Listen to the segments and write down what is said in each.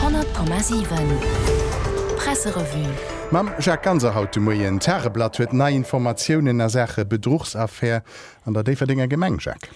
100,7 Presserevue. Mam Jacques Ganser haut de Moien. D'Tageblatt huet nei Informatiounen a Saache Bedruchsaffär an der Déifferdenger Gemeng, Jacques.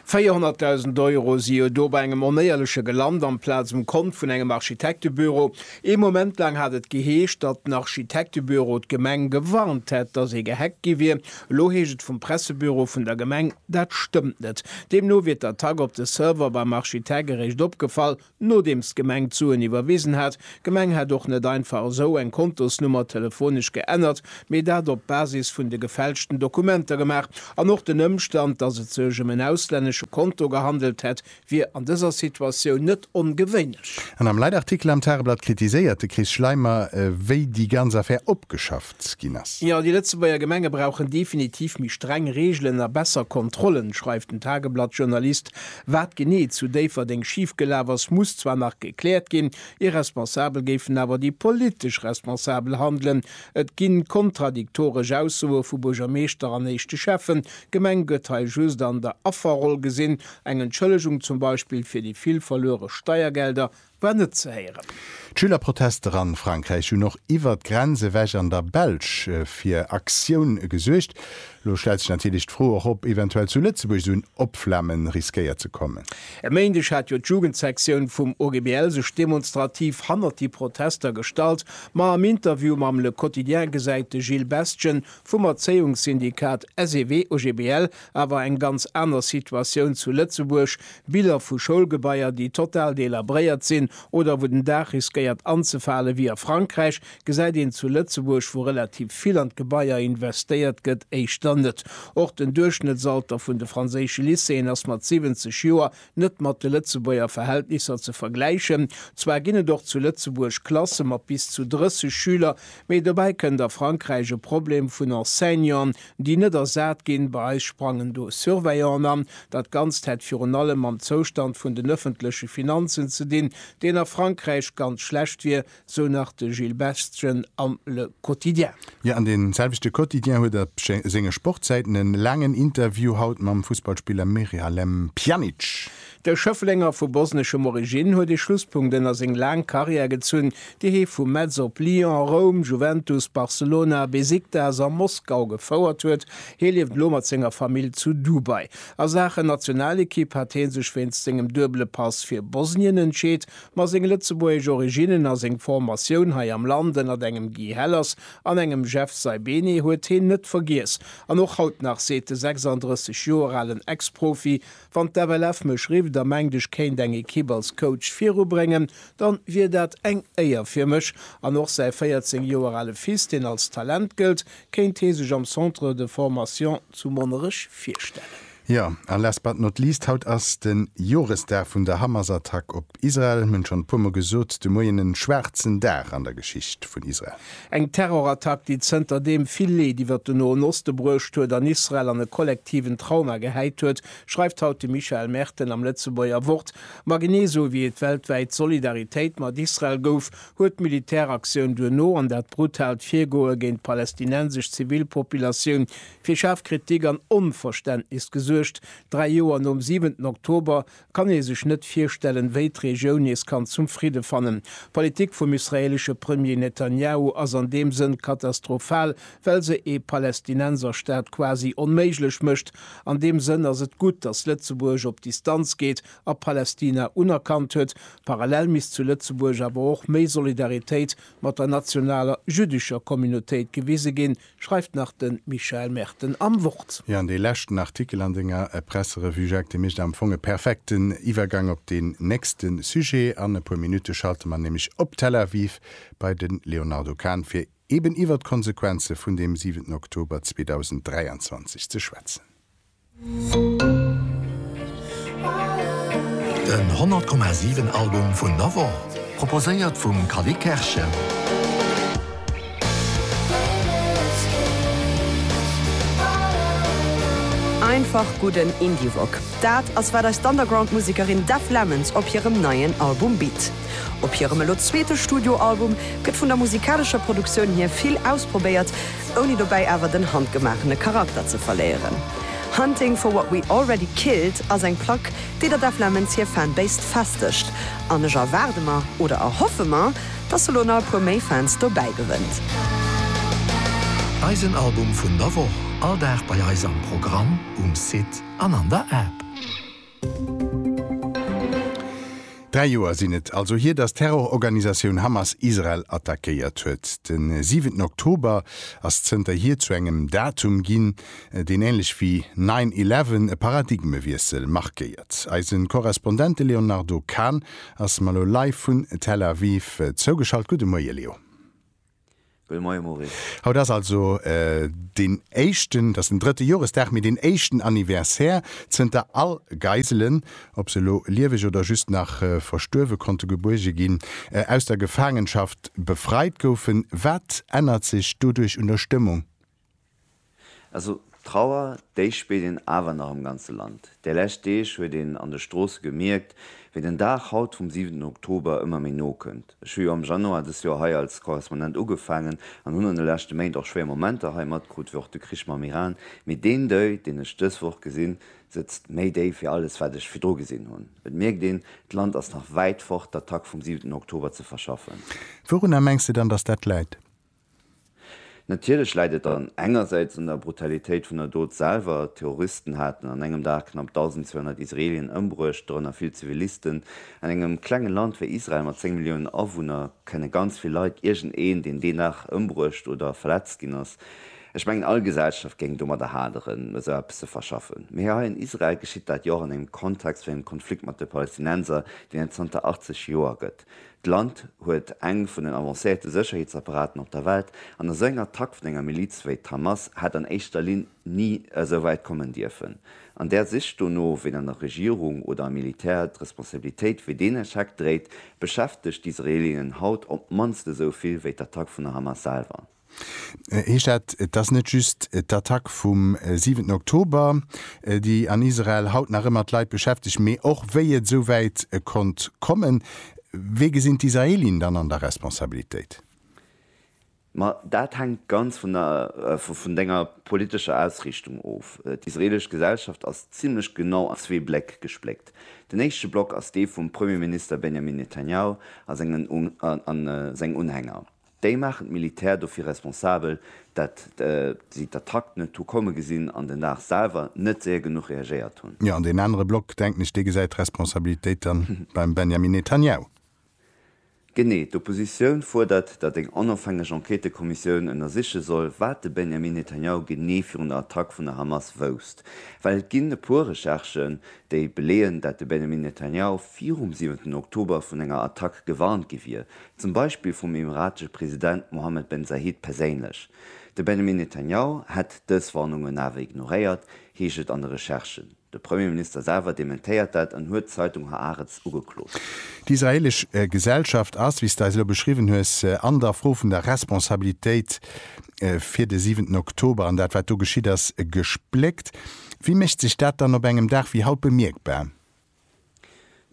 400.000 Euro si jo do bei engem Onéierleche gelant, amplaz um Kont vun engem Architektebüro. Ee Moment laang hat et geheescht, datt den Architektebüro d'Gemeng gewarnt hätt, datt ee gehackt gi wier. Elo heescht et vum Pressebüro vun der Gemeng, dat stëmmt net. Deemno wier d'Attack op de Server beim Architect eréischt opgefall, nodeems d'Gemeng d'Suen iwwerwisen hat. D'Gemeng hätt och net einfach esou eng Kontosnummer telefonesch geännert, mee dat op Basis vun de gefälschten Dokumenter gemaach. An och den Ëmstand, datt et sech ëm en auslännesche Konto gehandelt hätt, wier an dëser Situatioun net ongewéinlech. An am Leitartikel am Tageblatt kritiséiert de Chris Schleimer, wéi déi ganz Affär opgeschafft ginn ass. Jo, déi Lëtzebuerger Gemenge brauchen definitiv méi streng Reegelen a besser Kontrollen, schreift den Tageblatt-Journalist. Wat genee zu Déifferdeng schif gelaf ass, muss zwar nach gekläert ginn, irresponsabel géifen awer déi politesch Responsabel handelen. Et gi kontradiktoresch Aussoe vu Buergermeeschter an éischte Schäffen. D'Gemeng gëtt hei just an der Afferroll gesinn, Eng Entschëllegung zum Beispill fir déi vill verluere Steiergelder war net ze héieren. D'Schülerprotester an Frankräich hunn och iwwert d'Grenz ewech an der Belsch fir Aktioun gesuergt. Lo stellt sech natierlech d'Fro och op eventuell zu Lëtzebuerg esou en Opflammen riskéiert ze kommen. E Méindeg hat jo d'Jugendsektioun vum OGBL sech demonstrativ hannert déi Protester gestallt. Ma am Interview mam Le Quotidien gesäit de Gilles Bestgen vum Erzéiungssyndikat SEW-OGBL Awer eng ganz aner Situatioun zu Lëtzebuerg, Biller vu Schoulgebaier, déi total delabréiert sinn oder wou den Daach riskéiert anzefalen, wéi a Frankräich, gesäit een zu Lëtzebuerg, wou relativ vill an d'Gebaier investéiert gëtt, éischter net. Och den Duerchschnëttsalter vun de franséische Lycéeën ass mat 70 Joer net mat de Lëtzebuerger Verhältnisser ze vergläichen. Zwar ginn et och zu Lëtzebuerg Klasse mat bis zu 30 Schüler, mee dobäi kënnt a Frankräich e Problem vun Enseignanten, déi net ersat ginn. Bei eis sprangen do Surveillanten an. Dat Ganzt hätt virun allem mam Zoustand vun den ëffentleche Finanzen ze dinn, deen a Frankräich ganz schlecht wier, sou nach de Gilles Bestgen am Le Quotidien. Jo, an dee selwechte Quotidien huet op senge Sportsäiten e laangen Interview haut mam Fussballspiller Miralem Pjanic. De Schëfflenger vu bosneschem Origine huet e Schlusspunkt ënner seng laang Karriär gezunn, déi hie vu Metz op Lyon, Roum, Juventus, Barcelona, Besiktas a Moskau gefouert huet. Hie lieft elo mat senger Famill zu Dubai. A Saachen Nationalekipp hat hie sech wéinst sengem duebele Pass fir Bosnien entscheet, Ma seng lëtzebuergesch Originnen a seng Formatioun hei am Land ënnert engem Guy Hellers an engem Jeff Saibene huet heen net vergiess. An och haut nach seet de 36 Joer alen Ex-Profi, Wann d'FLF mech rifft a mengt ech kéint eng Ekipp als Coach virubréngen, dann wier dat eng Éier fir mech. An och säi 14 Joer ale Fils, deen als Talent gëllt, kéint hee sech am Centre de Formation zu Monnerech virstellen. Jo, a last but not least, haut ass de Joresdag vun der Hamas-Attack op Israel. Mir hunn schonn e puer mol gesot, de Moien en schwaarzen Dag an der Geschicht vun Israel. Eng Terrorattack, déi zënter deem vill Leed iwwert de Noen Oste bruecht huet an Israel an e kollektiven Trauma gehäit huet, schreift haut de Michael Merten am Lëtzebuerger Wort. Ma genee sou wéi et weltwäit Solidaritéit mat Israel gouf, huet d'Militäraktioun duerno an dat brutaalt Virgoe géint d'palästinensesch Zivilpopulatioun fir schaarf Kritik an Onverständnis gesuergt. Dräi Joer nom 7 Oktober kann ee sech net virstellen, wéi d'Regioun nees kann zum Fridde fannen. D'Politik vum israeelesche Premier Netanjahu ass an deem Sënn katastrophal, well se ee Palästinenserstaat quasi onméiglech mécht. An deem Sënn ass et gutt, datt Lëtzebuerg op Distanz geet a Palästina unerkannt huet. Parallel misst zu Lëtzebuerg awer och méi Solidaritéit mat der nationaler jüddescher Communautéit gewise ginn, schreift nach de Michael Merten am Wort. Jo, an dee leschten Artikel an denger Presserevue, Jacques, dee mécht am Fong e perfekten Iwwergang op deen nächste Sujet. An e puer Minutte schalte mer nämlech op Tel Aviv bei de Léonardo Kahn, fir eeben iwwert d'Konsequenze vun deem 7 Oktober 2023 ze schwätzen. Den 100,7 Album vun der Woch, proposéiert vum Callie Kerschen. Einfach gudden Indie-Rock, dat ass wat eis d'Underground-Musekerin Deaf Lemons op hirem neien Album bitt. Op hirem elo zweete Studio-Album gëtt vun der musikalescher Produktioun hier vill ausprobéiert, ouni dobäi awer den handgemaachene Charakter ze verléieren. Hunting for What We Already Killed ass eng Plack, déi der Def Lemons hir Fanbase festigt, an ech erwaarde mer, oder erhoffe mer, dass se lo nach e puer méi Fans dobäi gewënnt. Eisen Album vun der Woch, all Dag bei eis am Programm, um Site an an der App. Dräi Joer sinn et also hier, datt d'Terrororganisatioun Hamas Israel attackéiert huet. De siwenten Oktober ass zënterhier zu engem Datum ginn, deen änlech wéi Nine Eleven e Paradigmewiessel markéiert. Eise Korrespondente Léonardo Kahn ass mer elo live vun Tel Aviv zougeschalt. Gudde Moie Leo. Gudde Moie Maurice. Haut ass also deen éischten, dat ass den drëtte Joresdag, mee deen éischten Anniversaire zënter all Geiselen, ob se elo lieweg oder just nach verstuerwe konnte gebuerge ginn, aus der Gefaangenschaft befreit goufen. Wat ännert sech doduerch un der Stëmmung? Also d'Trauer, déi spillt een awer nach am ganze Land. Déi lescht Deeg huet een an de Stroosse gemierkt, wéi den Dag haut vum siwenten Oktober ëmmer méi no kënnt. Ech hu jo am Januar dës Joer hei als Korrespondent ugefaangen an hunn an de leschte Méint och schwéier Momenter hei matkrut, wéi och de Krich mam Iran. Mee deen Deuil, deen ech dës Woch gesinn, sëtzt méi déif wéi alles, wat ech virdru gesinn hunn. Et mierkt een, d'Land ass nach wäit fort, d'Attack vum siwenten Oktober ze verschaffen. Wourunner mengs de dann, datt dat läit? Natierlech läit et dann engersäits un der Brutalitéit vun der Dot selwer. D'Terroristen haten an engem Dag knapp 1.200 Israelien ëmbruecht, dorënner vill Zivilisten. An engem klenge Land wéi Israel mat 10 Milliounen Awunner kënne ganz vill Leit iergendeen, deen deen Dag ëmbruecht oder verletzt ginn ass. Ech mengen, all Gesellschaft géing domadder haderen, esou eppes ze verschaffen. Mee hei an Israel geschitt dat jo och an engem Kontext vun engem Konflikt mat de Palästinenser, deen et zanter 80 Joer gëtt. D'Land huet eng vun den avancéierte Sécherheetsapparaten op der Welt, an esou eng Attack vun enger Miliz wéi d'Hamas hätt an éischter Linn ni esou wäit kommen dierfen. An där Sich dono, ween an der Regierung oder am Militär d'Responsabilitéit fir deen Echec dréit, beschäftegt d'Israelinnen haut op d'mannst esou vill wéi d'Attack vun der Hamas selwer. Heescht dat, et ass net just d'Attack vum siwenten Oktober, déi an Israel haut nach ëmmer d'Leit beschäftegt, mee och wéi et esou wäit konnt kommen? Wee gesinn d'Israelien dann an der Responsabilitéit? Ma dat hänkt ganz vun der vun denger politescher Ausriichtung of. D'israelesch Gesellschaft ass zimmlech genau an zwee Bleck gespléckt. Den éischte Block ass dee vum Premierminister Benjamin Netanjahu a sengen Unhänger. Déi maachen d'Militär dofir responsabel, dat si d'Attack net hu komme gesinn an den Dag selwer net séier genuch reagéiert hunn. Jo, an deen anere Block, denken ech, dee gesäit d'Responsabilitéit dann beim Benjamin Netanjahu. Genee. D'Oppositioun fuerdert, datt eng onofhängeg Enquêtëkommissioun ënnersiche soll, wat de Benjamin Netanjahu genee virun der Attack vun der Hamas wousst. Well et ginn e puer Recherchen, déi beleeën, dat de Benjamin Netanjahu virum siwenten Oktober vun enger Attack gewarnt gi wier, Zum Beispill vum emiratesche President Mohammed Ben Zayed perséinlech. De Benjamin Netanyahu hätt dës Warnungen awer ignoréiert, heescht et an de Recherchen. De Premierminister selwer dementéiert dat an huet d'Zeitung Haaretz ugeklot. D'israelesch Gesellschaft ass, wéi s de eis elo beschriwwen hues, an der Fro vun der Responsabilitéit fir de siwenten Oktober an dat, wat do geschitt ass, gespléckt. Wéi mécht sech dat dann op engem Dag wéi haut bemierkbar?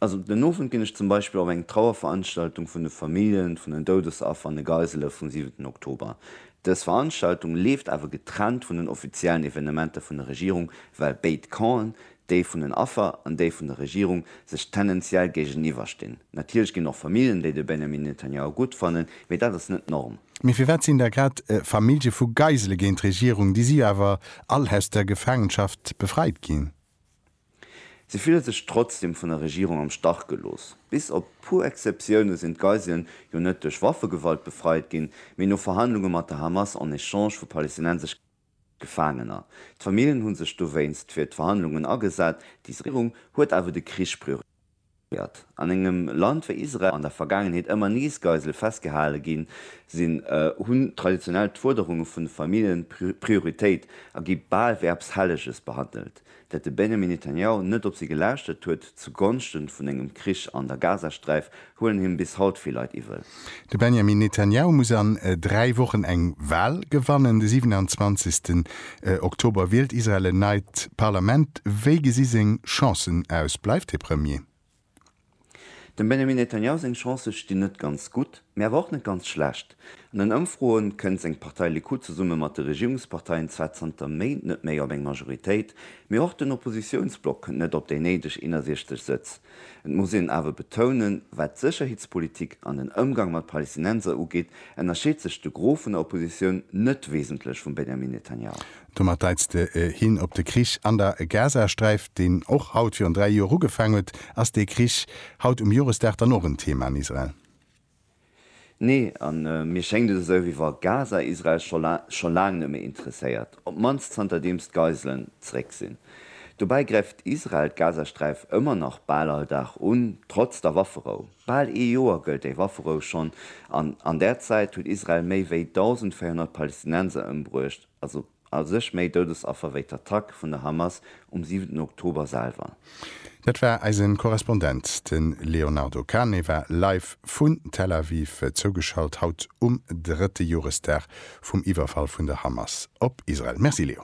Also den Owend ginn ech zum Beispill op eng Trauerveranstaltung vun de Familljen vun den Doudesaffer an de Geisele vum 7 Oktober. Dës Veranstaltung leeft awer getrennt vun den offiziellen Evenementer vun der Regierung, well béid Campen, déi vun den Affer an déi vun der Regierung, sech tendenziell géigeniwwer stinn. Natierlech ginn och Familljen, déi de Benjamin Netanyahu gutt fannen, mee dat ass net d'Norm. Mee firwat sinn da grad Famillje vu Geisele géint d'Regierung? Déi si jo awer all aus der Gefaangenschaft befreit ginn. Si fille sech trotzdem vun der Regierung am Stach gelooss. Bis op puer Exceptioune sinn d'Geiselen jo net duerch Waffegewalt befreit ginn, mee no Verhandlunge mat der Hamas en Echange vu palestinensesch Gefaangener. D'Famillen hu sech dowéinst fir d'Verhandlungen agesat. D'Israel-Regierung huet awer de Krich prioriséiert. Gëtt an engem Land wéi Israel an der Vergaangenheet ëmmer nees Geisele festgehale ginn, sinn, hunn traditionell d'Fuerderunge vun de Famillje Prioritéit a gi bal wéi eppes Helleges behandelt, dat de Benjamin Netanjahu net op si gelaaschtert huet, zu Gonschte vun engem Krich an der Gazasträif huelen him bis haut vill Leit iwwel. De Benjamin Netanjahu muss an dräi Wochen eng Wal gewannen. De 27 Oktober wielt Israel en neit Parlament. Wéi gesi seng Chancen aus? Bleift hie Premier? Dem Benjamin Netanjahu seng Chancë stinn net ganz gutt, mee awer och net ganz schlecht. An den Ëmfroe kënnt seng Partei Likud zesumme mat de Regierungsparteien zwar zanter Méint net méi op eng Majoritéit, mee och den Oppositiounsblock kënnt net op déi néideg 61 Sëtz. Et muss een awer betounen, wat d'Sécherheetspolitik an den Ëmgang mat Palestinenser ugeet, ënnerscheet sech de Gros vun der Oppositioun net wesentlech vum Benjamin Netanyahu. Domat deits de hin op de Krich an der Gazasträif, deen och haut virun dräi Joer ugefaang huet. Ass dee Krich haut um Joresdag dann och en Thema an Israel? Nee, a mir schéngt et esou, wéi wa Gaza Israel scho laang net méi interesséiert, op d'mannst zanterdeems d'Geiselen zeréck sinn. Dobäi gräift Israel d'Gazasträif ëmmer nach bal all Dag un, trotz der Wafferou. Bal ee Joer gëllt déi Wafferou schonn, an an där Zäit huet Israel méi wéi 1.400 Palestinenser ëmbruecht, also A sech méi Doudesaffer wéi d'Attack vun der Hamas um siwenten Oktober selwer. Dat war eisen Korrespondent. De Léonardo Cane war live vun Tel Aviv zougeschalt, haut um drëtte Joresdag vum Iwwerfall vun der Hamas op Israel. Merci Léo.